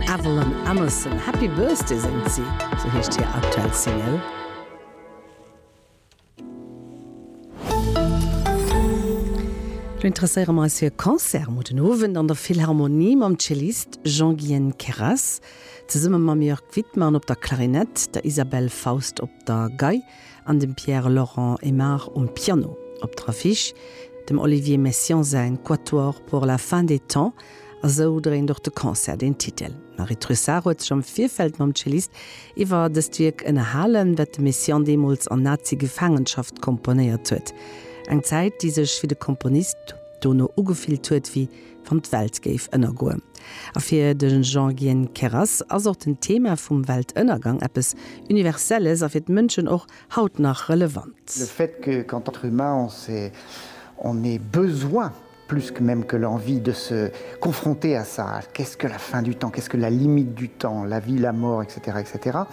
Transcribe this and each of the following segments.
Evelyn Emerson, Happy Birthday séngt si, sou heescht hir aktuell Single. Lo interesséiere mer eis fir e Concert mor den Owend an der Philharmonie mam Cellist Jean-Guyen Queyras, zesumme mam Jörg Widmann op der Klarinett, der Isabelle Faust op der Gei, an dem Pierre Laurent Aimard um Piano. Op der Affiche dem Olivier Messiaen säin Quatuor pour la fin des temps a sou dréint och de Concert den Titel. D'Marie Trussart huet sech am Virfeld mam Cellist iwwer dëst Wierk ënnerhalen, dat de Messiaen deemools an Nazi-Gefaangenschaft komponéiert huet. Eng Zäit, déi sech fir de Komponist dono ugefillt huet wéi wann d'Welt géif ënnergoe. A fir de Jean-Gien Queyras ass och den Thema vum Weltënnergang eppes Universelles a fir d'Mënschen och haut nach relevant. Le fait que qu'en tant qu'humain on se on ait besoin plus que même que l'envie de se confronter à ça, qu'est-ce que la fin du temps, qu'est-ce que la limite du temps, la vie, la mort, etc. Etc.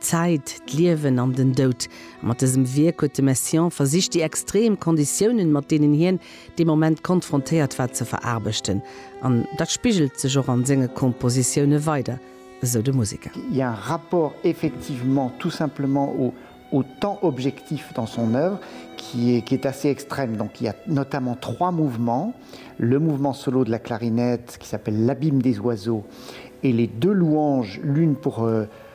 D'Zäit, d'Liewen an den Doud. Mat dësem Wierk huet de Messiaen versicht déi extreem Konditiounen, mat deenen hien dee Moment konfrontéiert war, ze veraarbechten. An dat spigelt sech och an senge Kompositioune weider, esou de Museker. Il y a un rapport effectivement tout simplement au au temps objectif dans son œuvre qui est qui est assez extrême. Donc il y a notamment trois mouvements, le mouvement solo de la clarinette qui s'appelle l'abîme des oiseaux et les deux louanges, l'une pour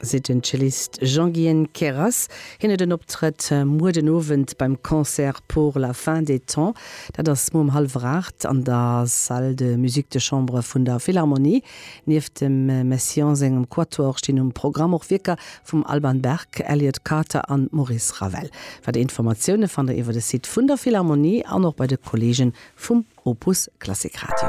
seet den Cellist Jean-Guyen Queyras. Hien huet en Optrëtt muer den Owend beim Concert pour la fin des temps. Dat ass muer um hallwer 8 an der Salle de musique de chambre vun der Philharmonie. Nieft dem Messiaen sengem Quatuor stinn um Programm och Wierker vum Alban Berg, Elliott Carter an Maurice Ravel. Weider Informatioune fannt der iwwer de Site vun der Philharmonie an och bei de Kolleege vum Opus Klassik Radio.